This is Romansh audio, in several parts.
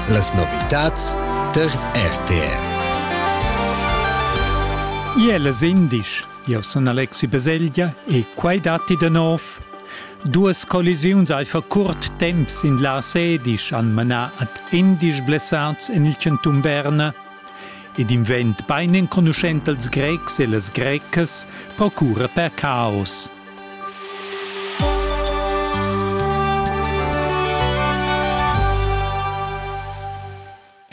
Las novitads tar RTR. Iel es indisch, io sun Alexi Beselgia e quai datti da nov. Duas collisiuns al fa curt temps in la sedisch an manà ad indisch blessats en il Centum Berna. Ed invent bain enconuschent als Grecs e las Grecas procura per caos.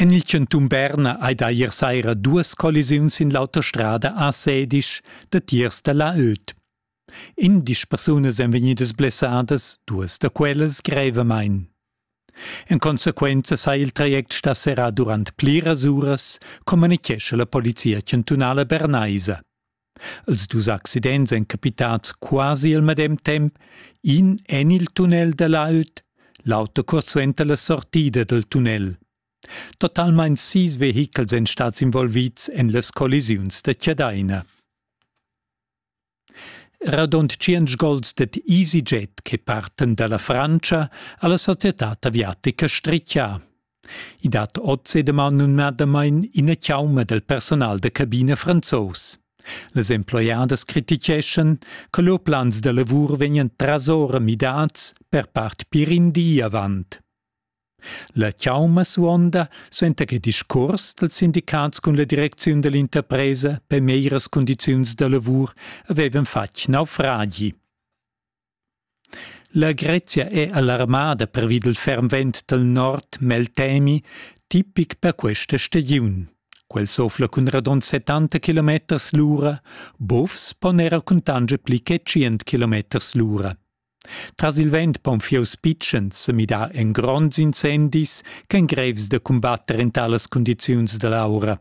En il chantun Berna hai da ier saira duas collisiuns sin l'autostrada a Sedisch datiers da la Öt. Indisch persunas èn vegnidas blessadas, duas da quellas grevamain. En consequenza sa il traject stà serrà durant pliras uras, communichescha la Polizia chantunala bernaisa. Els dus accidents èn capitads quasi al medem temp, in en il tunnel da l'aut, l'auter curt suenter la sortida dal tunnel. Totalmain sis vehichels èn stads involvids en las collisiuns da Chadaina. Radund tschient gols dad EasyJet che partan da la Frantscha a la societad aviatica Strichia. I dat oz e daman numnadamain ina chauma dal personal da cabina franzos. Las emploiadas criticheschan che lur plans da lavur vegnan trasora midads per part pir in di avant. La chauma suonda suenter il discurs dals sindicats cun la direcziun dell'interpresa per meglieras condiziuns da lavur avevan fatg naufragi. La Grezia è alarmada pervi dal ferm vent dal nord Meltemi, tipic per questa stagiun. Quel sofla cun radund 70 km l'ura, bovs pon era cuntanscher pli che 100 km l'ura. Tras il vent pon fieus pitschens sa midar en gronds incendis ch'èn grevs da cumbatter en talas cundiziuns da l'aura.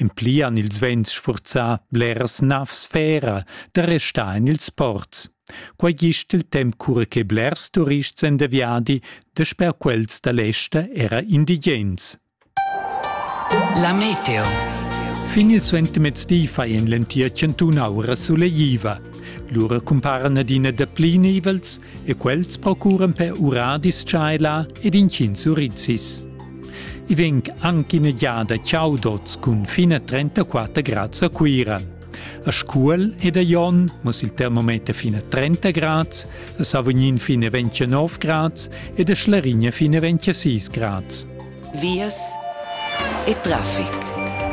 En pli han ils vents sfurzà bleras navs fera da restar en ils ports. Quai gist il temp cura che blers turists èn da viadi, dasper quels da l'ester era indigens. La meteo. Fin il suentermezdi fai en l'entir chantun aura sulegliva. Lura cumparan adina dapli nivels e quels procuran per uradis tschaila ed inchins urizis. I vegn anche ina giada ciaudots cun fin a 34 grads a Cuira. A Scuol ed a Jon muss il termometer fin a 30 grads, a Savognin fin a 29 grads ed a Schlarigna fin a 26 grads. Vias e traffic.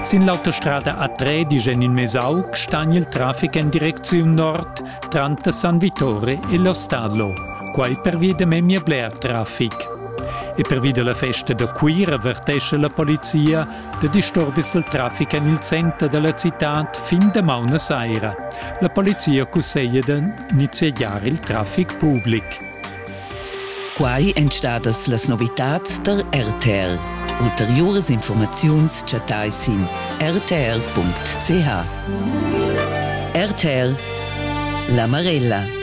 Sin l'autostrada A3 dice in Mesauc sta il traffic in direzione nord tranter San Vittore e lo Stadlo, quai per via da memia bler traffic. E pervi dalla festa da Cuira vertescha la polizia da disturbis il traffic en il center dalla citad fin damaun a saira. La polizia cusseglia da niziegiar il traffic public. Quai èn stadas las novitads tar RTL. Ulteriuras informaziuns chattai sin rtl.ch. RTL La Marella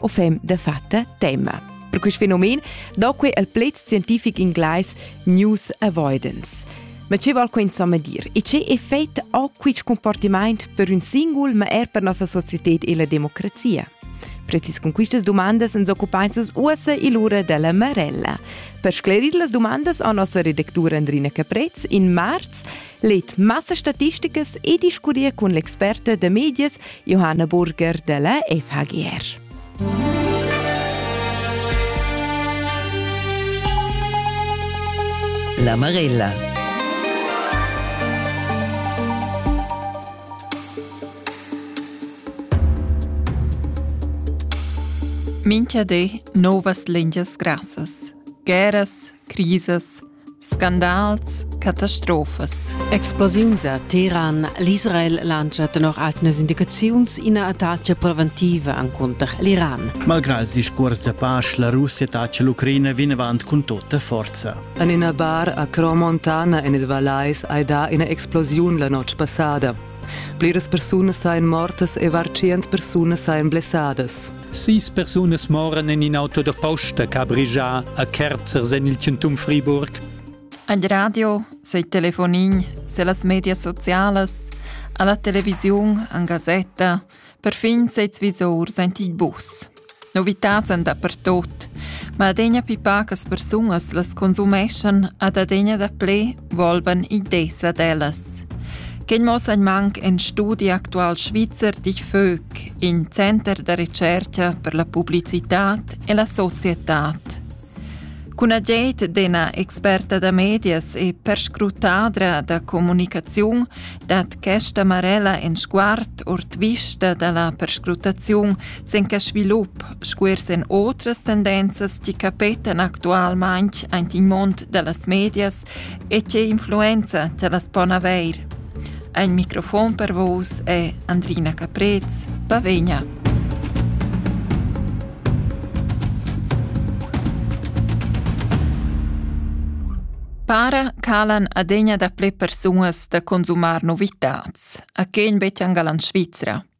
o fem de fatta tema. Per quest fenomen doque el pled scientific inglais news avoidance. Ma che val quei insomma dir? E che effect ha quist comportament per un singul, ma er per nossa società e la democrazia? Precis con quistas domandas ens occupainses uossa il ura della Marella. Per sclerir las domandas a nossa redactura Andrina Caprez in marz Leet massa statisticas e discurria cun l'experta da medias Johanna Burger della FHGR. La Marella. Mincha di novas lingias grassas, guerras, crisas, Scandals, catastrofas. Explosiuns a Teheran. L'Israel lancia tenor atgnas indicaziuns ina attacca preventiva encunter l'Iran. Malgrà il discurs da pace, la Russia attacca l'Ucraina vinavant cun tutta forza. En ina bar a Cromontana en il Valais hai dà ina explosiun la notg passada. Pliras persunas ein mortas e var tschient persunas ein blessadas. Sis persunas moran en in auto da posta che ha brigia a Kerzers en il Centum Friburg. Ad radio, sei telefonin, se las media socialas, alla televisión, an Gazetta, Perfin ses visurs ein ti bucs. Novitads èn dapertut, ma adegna pli pacas persunas las consumeschan ad adegna daplè volvan ideas ad ellas. Quei mossa ein manc en studi actual svizzer dich Vög, in center da recerca per la publicitad e la societad. Cun agid d'ina experta da medias e perscrutadra da communicaziun dat questa Marella in sguard ord vista da la perscrutaziun sin quest svilup sco er sin otras tendenzas che capetan actualmain aint il mund da las medias E tge influenza cha las pon avair. Ein microfon per vus è Andrina Caprez, Pavegna. Para calan adegna da ple persunas da consumar novitats, a quegn betg angalan Svizra.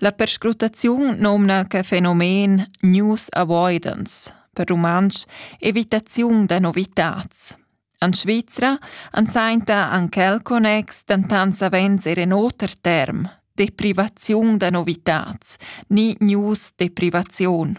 La perscrutaziun nomna que fenomen news avoidance, per rumantsch evitaziun da novitats. En Svizra han sainta an quel connex dentant savens er en oter term, deprivaziun da novitats, ni news deprivaziun.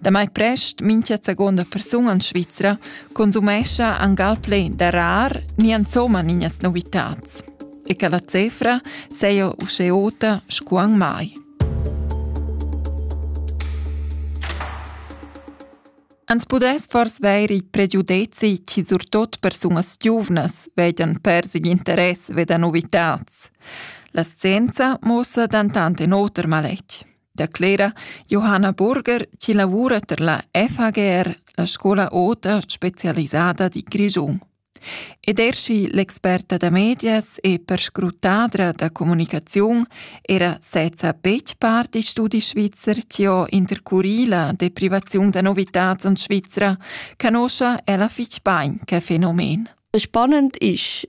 Damai prest mincha seguonda persun en Svizra consumescha angal plei da rar ni insomma ninas novitats. E che la cifra seia usce ota scuan mai. Ans pudess fors veir i pregiudezi chi surtot persunas giuvnas vedian persig interess veda novitats. La scienza mossa dantant en oter maletg. declera Johanna Burger chi lavura per la FHGR, la scola ota specialisada di Grischun. Ed er schi l'experta da medias e perscrutadra da comunicaziun era sezza betg part di studi svizzer chi ho intercurì la deprivaziun da novitats in Svizra, canoscha ella fich bain che fenomen. Spannend ist,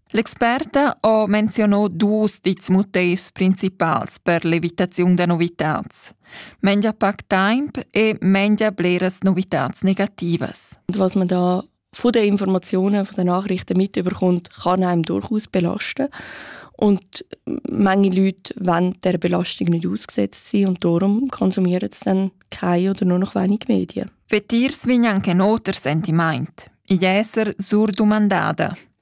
L'experta ha menzionà dus dits motivs principals per l'evitaziun da novitads. Mengia pac temp e mengia bleras novitads negativas. Und was man da von den Informationen, von den Nachrichten mitbekommt, kann einem durchaus belasten. Und manche Leute wollen der Belastung nicht ausgesetzt sein und darum konsumieren sie dann keine oder nur noch wenig Medien. Vetirs vegnan che noter sentiment. Igl esser surdumandada.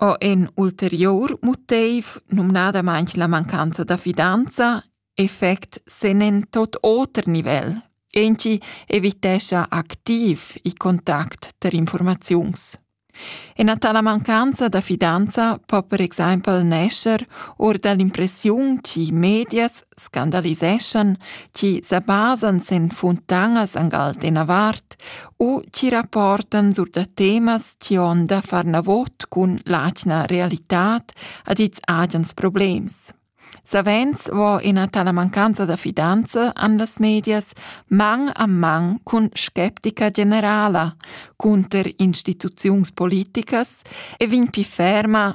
ho in ulteriur motiv, numnadamaing la mancanza da fidanza, effect sen in tot oter nivel. Enci evitescha activ i contact ter informaziuns. Ina tala mancanza da fidanza po per exempel nescher or dall'impressiun chi medias scandaliseschan chi sa basan sen funtanas angal d'ena vart u chi rapportan sur da temas chi on da far navot cun l'atgna realitat ad its agens problems. Savens vo ina tala mancanza da fidanza an las medias mang a mang cun skeptica generala, cunter instituziuns politicas e vin pi ferma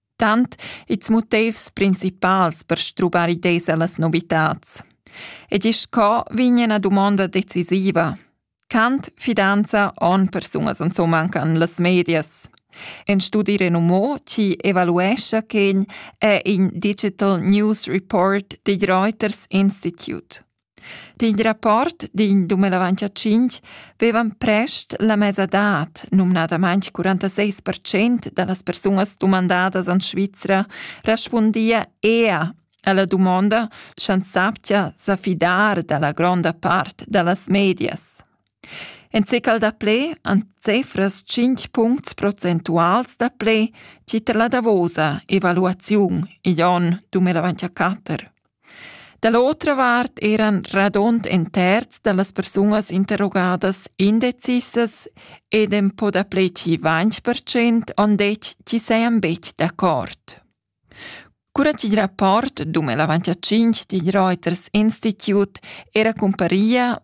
Tant ils motivs principals per strubar ideas a las novitads. E gist co vegn ina dumonda decisiva. Quant fidanza han persunas insomma anche en las medias? Un studi renomò ci evaluescha che è in Digital News Report digl Reuters Institute. D'in rapport d'in dumenavant a tschintg vevan prest la mesadad, numnadamain 46 percent da las persunas dumandadas en Svizra, respundia ea a la dumonda, sch'ans sappia sa fidar da la gronda part da las medias. En cecal daplè han cefras tschintg puncts procentuals daplè tier la davosa evaluaziun igl onn 2004. Da l'otra vart eran radund in terz da las persunas interrogadas indecisas ed en po dapli che ventg percent han detg ch'i sajan betg d'accord. Cura ch'il rapport dum el avantia tschintg digl Reuters Institut era cumparia,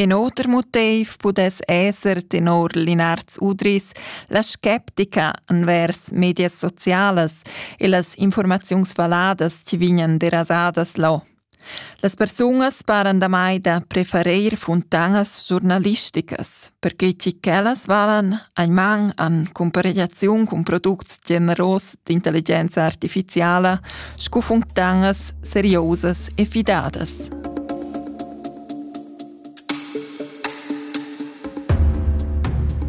In oter motiv pudess esser tenor Linards Udris la sceptica envers medias socialas e las informaziuns valladas chi vegnan derasadas là. Las persunas paran damai da preferir funtanas giornalisticas, perche chi quellas valan ein man an comparegliaziun cun products generos d'intelligenza artificiala scu funtangas seriosas e fidadas.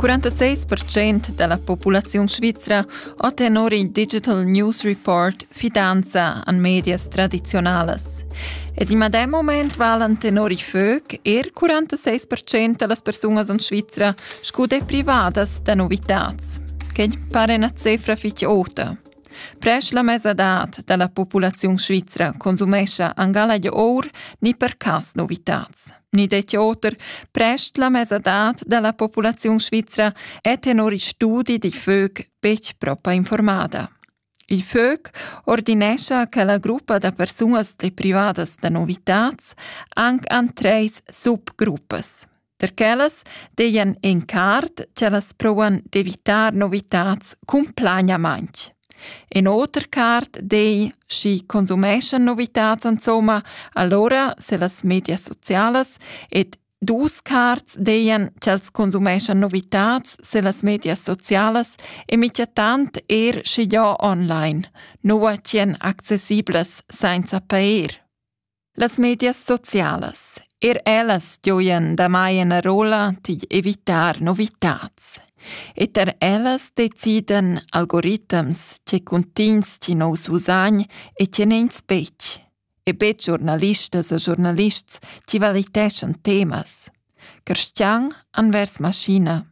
...46% della populazione svizera ha tenor il Digital News Report fidanza an medias tradizionalas. Ed in medem moment valen tenor i FÖC er 46% das persunas in Svizra scu dei privadas da novitads, che pare una cifra fitg ota. Presch la mesadad da la populaziun svizra consumescha angala di or ni per cas novitats. Ni detje oter, presch la mesadad da la populaziun svizra è tenor i studi di FÖG betg propa informada. Il FÖG ordinescha che la gruppa da persunas de privadas da novitats anc an treis subgruppas. Per quellas dejan encart ch'ellas provan d'evitar novitats cumplagnamaintg. In oter cart dei, schi consumeschan novitats insomma, allora se las media socialas ed dus cards dejan ch'els consumeschan novitats se las media socialas e mica tant er schi già online, nua tien accessiblas sainza pair. Las medias socialas, er ellas gioian damai ina rolla digl evitar novitads. Et er ellas deciden algoritms che cuntigns chi nous usagn e che neins betg, e betg giornalistas e giornalists chi valiteschan temas. Cristian anvers maschina.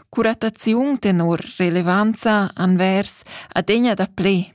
Curataziun tenor relevanza anvers adegna da ple,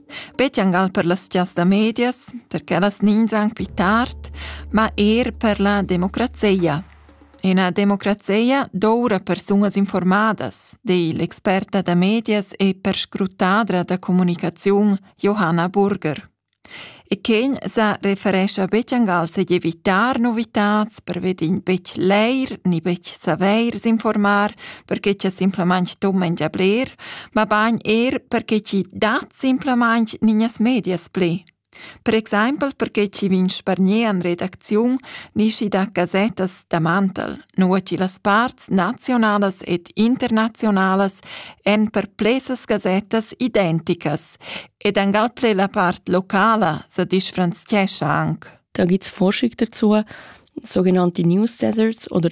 Speziangal per las chas da medias, perché las ninzan qui tard, ma eir per la democrazia. Ina democrazia doura persunas informadas, di l'experta da medias e perscrutadra da comunicaziun Johanna Burger. E quin sa referescha Betjangal se evitar novitats per vedin bec leir ni bec saveir s'informar perché cha simplamaing tu mangia bler, mabain eir perché chi dat simplamaing gnignas medias plü. Per exaimpel perché chi vin spargner in redacziun ni schi da gasettas da mantel, nua chi las parts nazionalas ed internazionalas èn per plesas gasettas identicas ed angal ple la part locala sa disfranzchescha anche. Da gibt's Forschung dazu, sogenannte News Deserts oder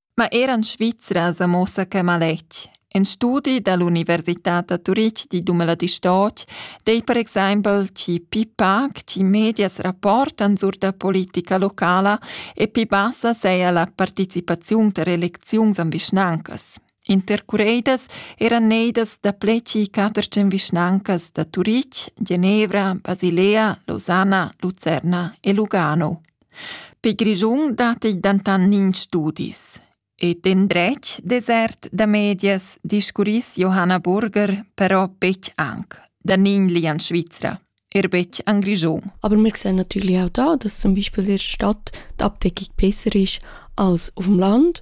Ma era en Svizra sa muossa que maletg. In studi da l'Università da Turitg di Dumeladistoc dei per exempel chi pi pac chi medias rapportan sur da politica locala e pi bassa seia la participaziun ter elecziuns an vischnancas. Intercureidas eran neidas da pleci catercen vischnancas da Turitg, Genevra, Basilea, Losanna, Lucerna e Lugano. Per Grischun datti dentant nins studis. E d'endretg desert da medias discurriss Johanna Burger però betg anc, da nign lian Svizra, er betg an Grischun. Aber wir sehen natürlich auch da, dass zum Beispiel in der Stadt die Abdeckung besser ist als auf dem Land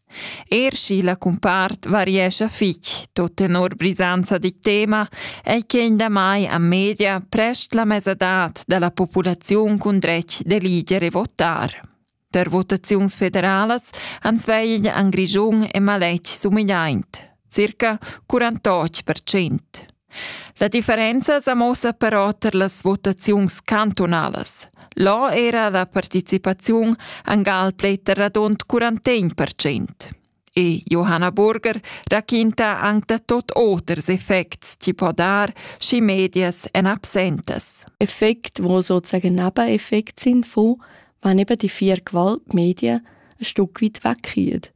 Er sch'i la cumpart variescha fitg tot tenor brisanza di tema, ei quegn damai a media prest la mesadad dalla populaziun cun dretg d'eliger e votar. Der Votaziuns federalas ans vegl an Grischun e maletg sumigliaint. circa 48 percent. La differenza sa mossa però tar las votaziuns cantunalas. Là era la participaziun angal pleiter radund 41 percent. E Johanna Burger raquinta anc da tot oters effects chi po dar, schi medias en absentas. Effekt, wo sozusagen Nebeneffekte sind von, wenn eben die vier Gewaltmedien ein Stück weit wegkommen.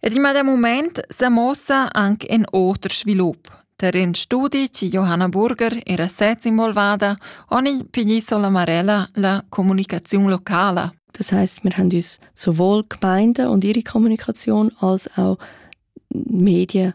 Ed il medem mument sa muossa anc in oter svilup. Tar in studi chi Johanna Burger era sez involvada han i piglì sola Marella la communicaziun locala. Das heißt, wir haben uns sowohl Gemeinde und ihre Kommunikation als auch Medien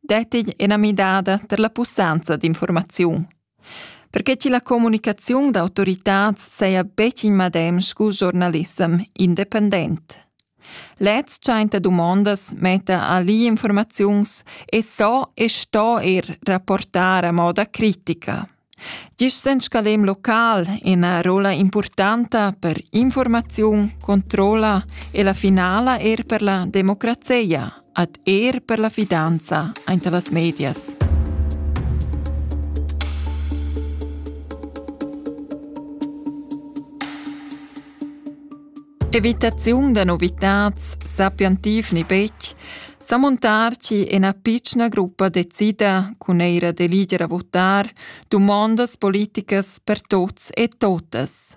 dettigl ina midada per la pussanza d'informaziun. Perché che la comunicaziun d'autoritads saja betg in madem scu giornalissem independent. Lez tschenta dumondas metta a li informaziuns e so e sto er rapportar a moda critica. Gist sen scalem local ina rola impurtanta per informaziun, controlla e la finala er per la democrazia, ad er per la fidanza ante las medias. Evitaziun da novitads sappian tiv ni betg sa montarci ina pitschna gruppa decida cun eira d'eliger a votar dumondas politicas per tots e totas.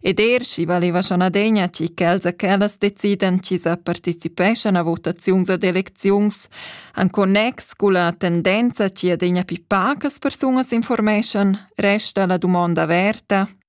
Ed er schi valeva schon adegna ci ch'els a quellas decidan ci sa participeschan a votaziuns ad elecziuns an connex cu la tendenza ci adegna pi pacas persunas informeschan, resta la dumonda averta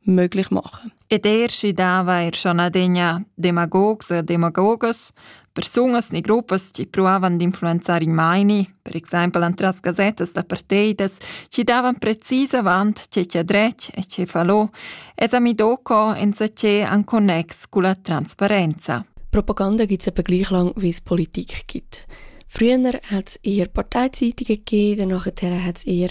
möglich machen. Ed er si dava er schon adegna demagogs e demagogas, persunas ni gruppas che provavan d'influenzare i maini, per exempel entras gasettas da parteidas, che davan precis avant ce c'è drech e ce falò, es ami doco enzaché an connex cu la transparenza. Propaganda gibt es etwa gleich lang, wie es Politik gibt. Früher hat es eher Parteizeitung gegeben, danach hat es eher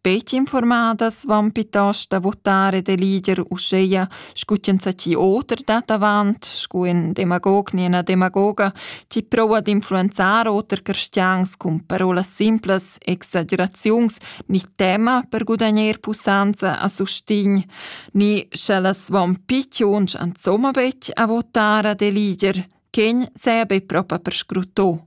Peti informadas van piuttost a votar e da lider uscheia scu ch'enzatgi oter dat avant, scu ün demagog ni ena demagoga, chi proua d'influenzar oter cristians cun parolas simplas, exageraziuns, ni tema per gudagner pussanza a sustign, ni sch'ellas van picciuns insomma betg a votar a da lider, ch'egn saja be propa perscrutto.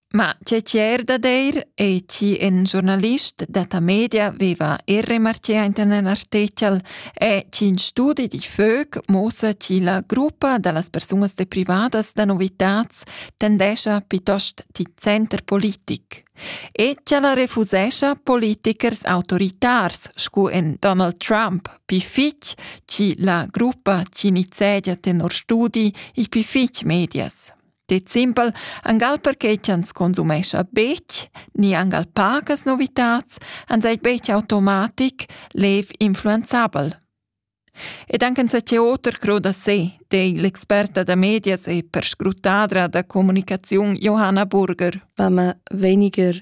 Ma tge tier da deir ei chi in giornalist detta media veva er remarchea inten in artechel è chi in studi di föc mossa chi la gruppa da las persunas deprivadas da novitats tendescha piuttost ti center politic. E ch'ella refusescha politikers autoritars scu in Donald Trump pi fitg chi la gruppa chi nizegia tenor studi i pi fitg medias. Det simpel, angal perché ch'ans consumescha betg, ni angal pagas novitats, ans ei betg automatic lev influenzabel. Ed anche se c'è oter cro da sé, dei l'experta da medias e perscrutadra da comunicaziun Johanna Burger. War man weniger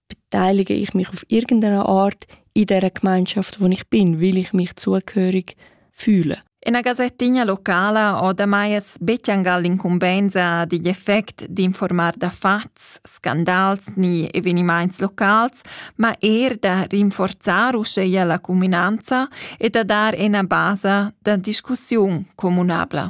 beteilige ich mich auf irgendeine Art in der Gemeinschaft, wo ich bin, weil ich mich zugehörig fühle. Una gasettigna locala ho damai es bettiangal l'incumbenza digl effect d'informar da fats, scandals ni evenimaints locals, ma eir da rinforzar uscheia la cuminanza e da dar ena basa da discussiun comunabla.